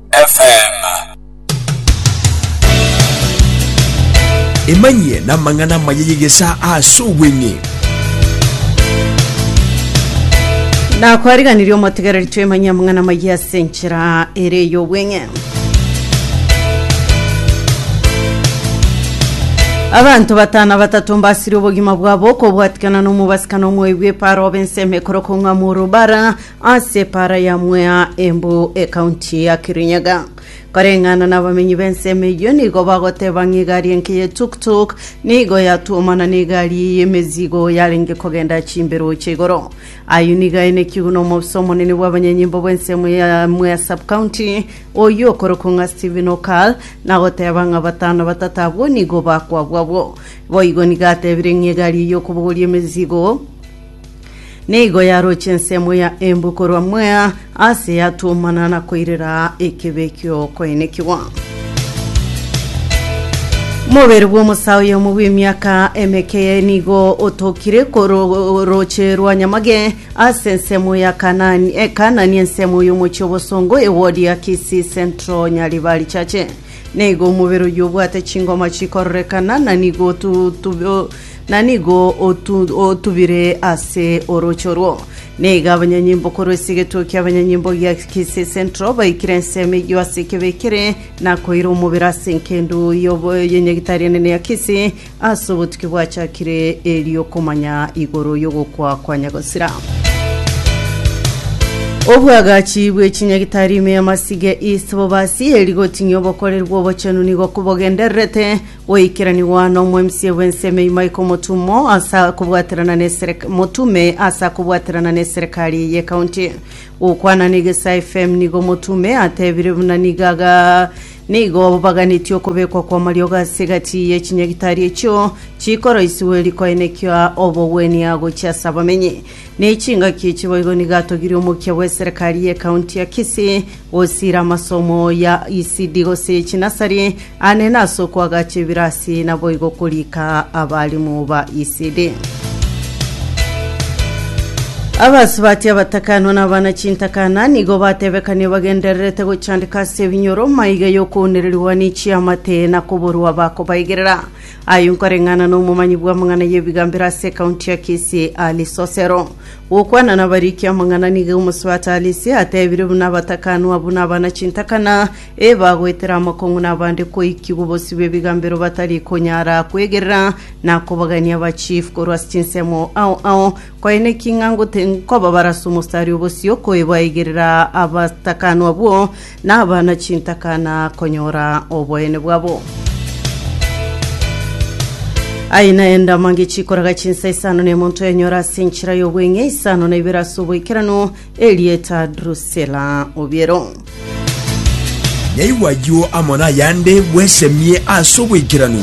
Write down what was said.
FM. Emanyie namang'ana amaya y'egesaa ase obweng'e. nakwariganirie omotigereri twemanyia amang'ana amaya ase enchera ere ey'obweng'e abanto batano batato mbasirie obogima bwabo okobwatikana na omobasi kana omoebi bw'eparo obe ensemo ekorokong'a morobara Ase epaara ya Mwea Embu ekaunti ya Kirinyaga, koreng'ana nabamenyi b'ensemo eyio nigo bagoteba ng'a egari enke ye tuk tuk nigo yatuomana n'egari eye y'emezigo yarenge kogenda chimbero chia igoro. Ayio nigo aenekigwe n'omoofisa omonene bw'abanyanyimbo bw'ensemo ya Mwea Sub-County oyio okorokwa ng'a Stephen Okal na goteba ng'a batano batato abwo nigo bakwabwa abwo. Boigo nigo atebire ng'a egari eye y'okobogoria emezigo Nigo yaroche ensemo ya Embu korwa Mwea ase yatuomana na koirera ekebe ki'okoenekigwa. Mobere bw'omosa oyomo bw'emiaka emekeye nigo otokire koro- roche rwa Nyamage ase ensemo ya Kanani, e Kanani ensemo y'omochie obosongo ewodi ya Kisii Central Nyaribari Chache. Nigo omobere oyio obwate chingoma chikororekana na nigo otu- otu- o- na nigo otu, otubire ase orooche orwo. Niga abanyanyimbo korwa esegetuo kia abanyanyimbo gia Kisii Central baikire ensemo eyio ase ekebe ekere na koira omobere ase enkendu yobo- y'enyagitari enene ya Kisii ase obotuki bwachakire eriokomanya igoro y'ogokwa kwa Nyagosira. Obwagachi bw'echinyagitari ime y'amasiga East Bobasi eri goting'ia obokoreri bw'obochenu nigo kobogendererete Goikeranigwa n'omoemsie bw'ensemo ime iko omotumo ase kobwaterana n'eserek- motume ase kobwaterana n'eserekari eye ekaunti. Gokwana n'Egesaa FM nigo omotume atebire buna nigo aga nigo baganetie okobekwa kw'amariogo ase egati ye chinyagitari echio chikoroisiwe rikoenekia obogwenia gochia ase abamenyi. Nechingaki echiboigo nigo atogirie omokia bw'eserekari y'ekaunti ya Kisii Gosiira amasomo ya ECD gose chinasari ane nase okoagacha ebirasi naboigo korika abalimu ba ECD. Abasubati abatakanwa na abana chintakana nigo batebekania bagendererete gochandika ase ebinyoro maiga y'okounererigwa ni chiamate na koborwa bakobaigerera. Aye nkoreng'ana na omomanyi bw'amang'ana y'ebigambero ase ekaunti ya Kisii Ali Sosero. Gokwana nabariki amang'ana nigo omosubati Alice atebire buna abatakanwa buna abana chintakana ee bagoetera amakong'u nabande koiki bobosio bw'ebigambero batari konyara kwegerera na kobagania ba chief korwa ase chinsemo ao ao koe neki ng'a ngote nkoba barase omostari obosio koe baigerera abatakanwa bwo Nabana chintaka na konyora oboene bwabo. Aye naende amange chikoraga chinsa isano na emonto yanyora ase enchera y'obweng'e isano na ibere ase oboikeranu, erieta Drusila Obiero. Naigwa ayio amo nayande bwesemie ase oboikeranu.